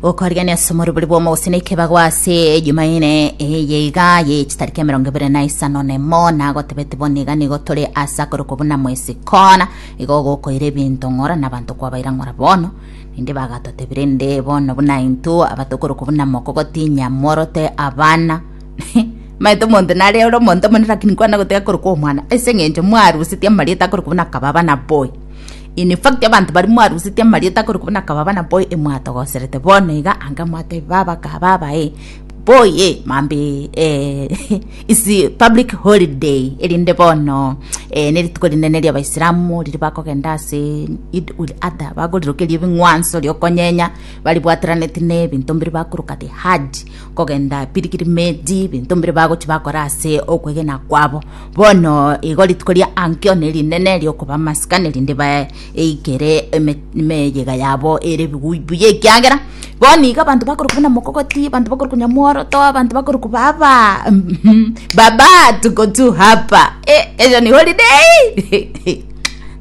gokorigania ase omoribori bw'omogosi na ekebago ase jumaine eye iga ye chitariki emerongo ebere na isano nemo nagotebeti bono iga nigo tore ase akorokwa buna mwesi kona igo gokoira ebinto ng'ora na abanto kwabaira ng'ora bono ninde bagatotebire nde bono buna intwe abatokorokwa buna moko gotinya mworote abana maete omonto nare ore omonto omonene lakini kwana goteka korokwa omwana ase eng'encho mwarusetie amarieta akorokwa buna kababa na boy In fact, abanto baria mwarusetie amarieta akorokwa buna kababa na boy e mwatogoserete bono iga ange mwatebi baba kababa e boy e mambe eh, is public holiday erinde bono eh, nerituko rinene ria abaisilamu riri bakogenda ase id ul adha bagorirokeria ebing'wanso riokonyeenya baribwateraneti ne ebinto mbiri bakoroka the hajj kogenda Piligirimeti, ebinto mbire bagochi bakora ase okwegena kwabo. Bono igo rituko ria Ankio nerinene riokoba amasikani, rinde baeikere eme- emeyega yabo ere bigui buya ekiagera bono iga abanto bakorokwa buna mokogoti, abanto bakorokwa nyamworoto, abanto bakorokwa baba baba tuko tu hapa eh, erio nigo ridei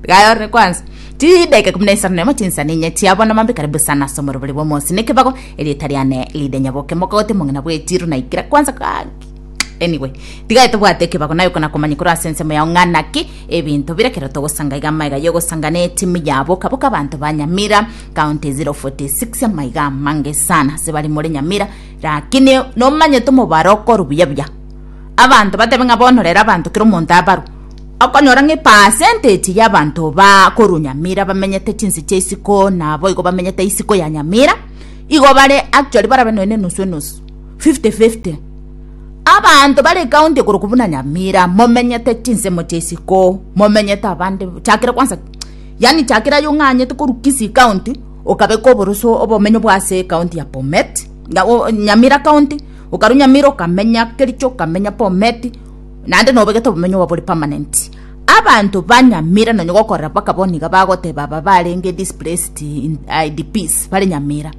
Tiga ore kwanza chidaki ikumi na isano na emo chinsa ninye chiabo na mambia karibu sana ase omorobori bwa omosi na ekebago Erieta riane ridenyaboke mogote mong'ina bwe Tiro na ikira kwanza kaki anyway tigae tobwate ekebago nayo kana komanya koro ase ensemo yao ng'ana ki ebinto bire kero togosanga iga maiga yogosanga ne timu ya boka boka banto ba Nyamira county 046 maiga mange sana ase bari more Nyamira lakini nomanye tomobaro okoru buya buya abanto batebe ng'a bono rero abanto kero omonto abaru Okonyora ng'a epercentage y'abanto bakorwa Nyamira bamenyete chinse chia isiko naboigo bamenyete isiko ya Nyamira igo bare actually barabe nonya na enusu enusu 50-50 abanto bare ekaunti ekoroku buna Nyamira momenyete chinsemo chia isiko momenyete abande chakera kwansa yaani chakera aye ong'anyete korwa Kisii county okabeka oboroso obomenyo bwa ase ekaunti ya Bomet Nyamira county okarwa Nyamira okamenya Kericho okamenya Bomet. naende nobegete obomenyo bwabo bore permanent. Abanto banyamira nonya gokorera mpaka bono iga bagoteba aba barenge displaced in IDPs bare Nyamira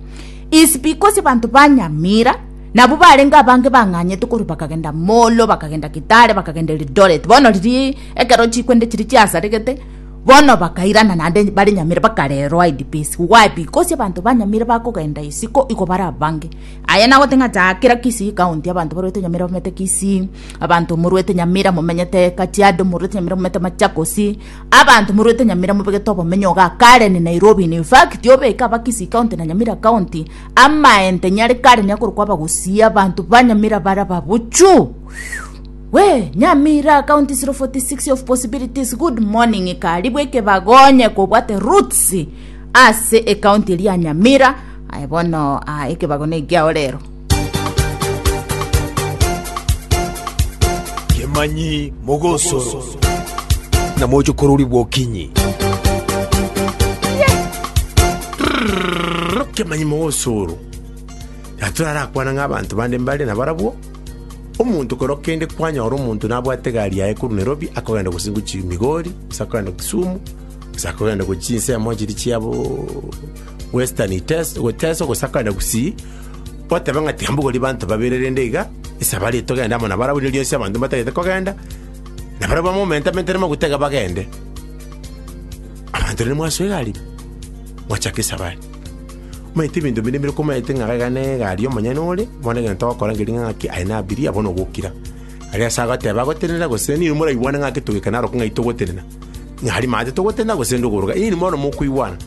is because abanto ba Nyamira nabwo barenge abange bang'anyete korwa bakagenda Molo, bakagenda Kitale, bakagenda Eldoret. Bono riria ekero chikwende chiria chiasaregete bono bakairana naende bare Nyamira bakarerwa IDPs. Why? Because abanto ba Nyamira bakogenda isiko igo bare abange. Aye nagoteba ng'a chaa kera Kisii county abanto barwete Nyamira bamete Kisii, Abanto moruete nyamira momenyete Kajiado, moruete nyamira momenyete Machakosi, abanto moruete nyamira mobegete obomenyo iga kare ni Nairobi. In fact, obeke aba Kisii County na Nyamira County, amaente nyare kare nigo akorokwa abagusii, abanto ba Nyamira bare ababuchu. We, Nyamira County 046 of possibilities, good morning ikari bweka ebagonye kobwate roots ase ecounty eria ya Nyamira. Aye bono, ah, ekebago nekiao rero. Kemanyi mogosoro. Na moche kororigwa okinyi. Kemanyi mogosoro. Natorarakwana ng'a abanto bande mbare nabarabwo, omonto kero kende kwanyora omonto nabwate egari yaye korwa Nairobi akogenda gose gochi Migori, gose akogenda Kisumu, gose akogenda gochia chinsemo chiria chia bo Western Iteso- Teso, gose akogenda gusii, Oteba ng'a tiambogorie banto babere, rende iga esabari etogende amo nabarabwo erio rionsi abanto mbatagete kogenda, na barabwo bamomentamentere amaguta iga bagende. Abanto rende mwasoa egari, mwachaka esabari. Omanyete ebinto binde mbire komaete ng'a iga na egari omonyene ore, bono egento ogokora ngeria ng'a ng'aki aye nabirie, abwo nogokira. Are ase agoteba agotenena gose ninwe moraigwane ng'aki togikane arokwo ng'ai togotenena, ng'a aria maate togotenena gose nde ogoroka, inwe bono mokoigwana.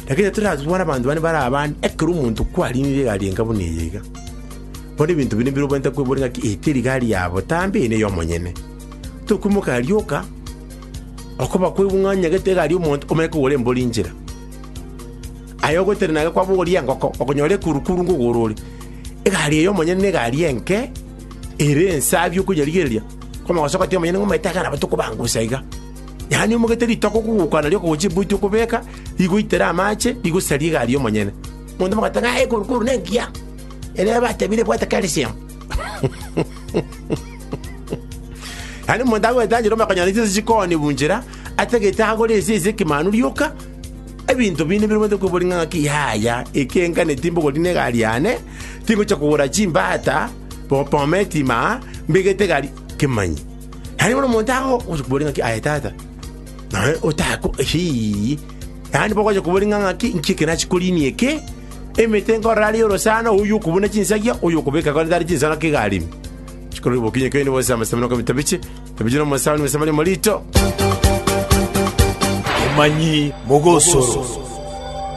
Na kera toratware abanto bane bare abande, ekero omonto kwariinire egari enka buna eye iga, bono ebinto bire mbire obwenerete kweboria ng'aki eye teri gari ya botambe, eye neye omonyene. Tokoimoka aria oka, okoba kwaigwa ng'a onyegete egari y'omonto, omanye kogora embori inchera. Aye ogotenena iga kwabogoria engoko, okonyora ekurukuru ng'o igoro ore. Egari eye omonyene na egari enke, ere ensabi okonyerigereria, kwamanya gosoka teri omonyene ng'a omanyete iga nabo tokobangusa iga. Yaani omogete ritoke okogokwana riokogocha ebuoti okobeka, rigoitere amache, rigosaria egari yomonyene. Monto mogateba ng'a ekoru koru nengiya. Erio batebire bwate calcium. Yaani omonto agoeta njira omakonyora chinsa chikoni bunchera, atagete agore ese ase ekemanu rioka, ebinto binde bire bwate kwebori ng'a ng'aki yaya, eke nkaneti mbogori ne egari yane, tingocha kogora chimbata, bo- bometi maa, mbegete egari, kemanyi. Yaani bono omonto ago ogocha koboria ng'aki aye tata nonye otako hii yaani bogocha koboria ng'a ng'aki inki eke nachi korinia eke emete nkorora aria orosana oyu okobuna chinsagia oyu okobeka kore tari chinsoro iga aremi chikorwa obokinyi okeene bonsi amasabo na okomita biche ebiche na omosaani omosamani omorito Omanyi mogosoro.